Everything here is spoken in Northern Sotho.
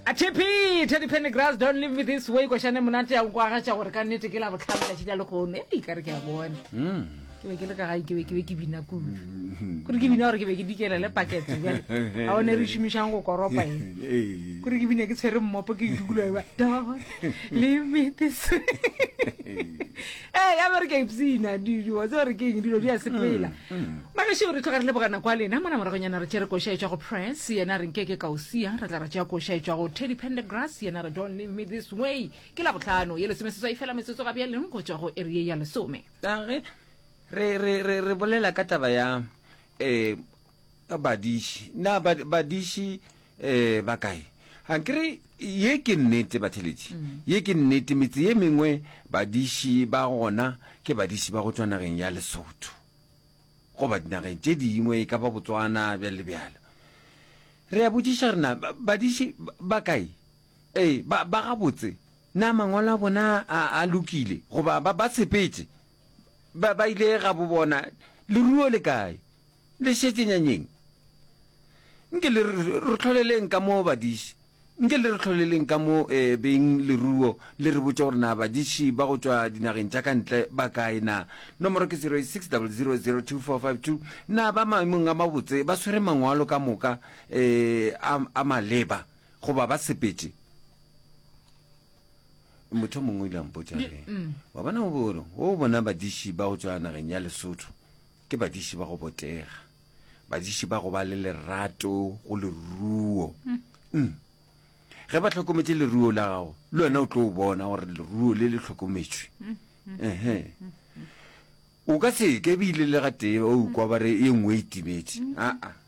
atepe teddy pennegrass don't leave me this way košane monate ya nkwagatša gore ka nnete ke la botlhano tšatši la lekgono e ikare ke a bona ke be ke le ka gae ke be ke be ke bina kudu kore ke bina gore ke be ke dikele le pakete bjale ga one re šomišang go koropa e kore ke bina ke tshwere mmopo ke dukula ba don leave me this way ee ya bere ke a ipsina dilo wa tse gore ke eng dilo di a sepela magašeo re tloga re leboga nako a lena mona moragonyana re tšere koša e tswa go press yena re nkeke ka o sia re tla re tšea koša e tswa go teddy pendergrass yena re don't leave me this way ke la botlhano ye lesome seswai fela metsotso ga bjaleng go tswa go area ya lesome Ka ge re re re re bolela ka taba ya eh Badiši, na ba, badiši e, ba kae? A ke re, ye ke nnete, batheletši. Mm. Ye ke nnete, metse ye mengwe badiši ba gona ke badiši ba go tšwa nageng ya Lesotho. Goba dinageng tše dingwe, e ka ba Botswana, bjalo le bjalo. Re a botšiša re na, badiši ba kae? Ee, ba, ba gabotse. Na mangwalo a bona a, a lokile? Goba ba, ba sepetše? Ba, ba ile ga bo bona, leruo le kae? Le šetše nyanyeng? Nke le re hloleleng ka mo badiši, nke le re hloleleng ka mo ee beng leruo le re botše gore na badiši ba go tšwa dinageng tša ka ntle ba kae na. Nomoro ke 0600024452. Na ba maemong a mabotse, ba swere mangwalo ka moka ee a a maleba goba ba sepetše? Motho yo mongwe o ile a mpotša a re, Wa bona o bo o bona badiši ba go tšwa nageng ya Lesotho, Ke badiši ba go botega, badiši ba go ba le lerato go leruo. Mm. Ge ba hlokometše leruo la gago, le wena o tlo bona gore leruo le le hlokometšwe. Ehe. O ka se ke bile le gatee o kwa ba re e nngwe e timetše. Aa.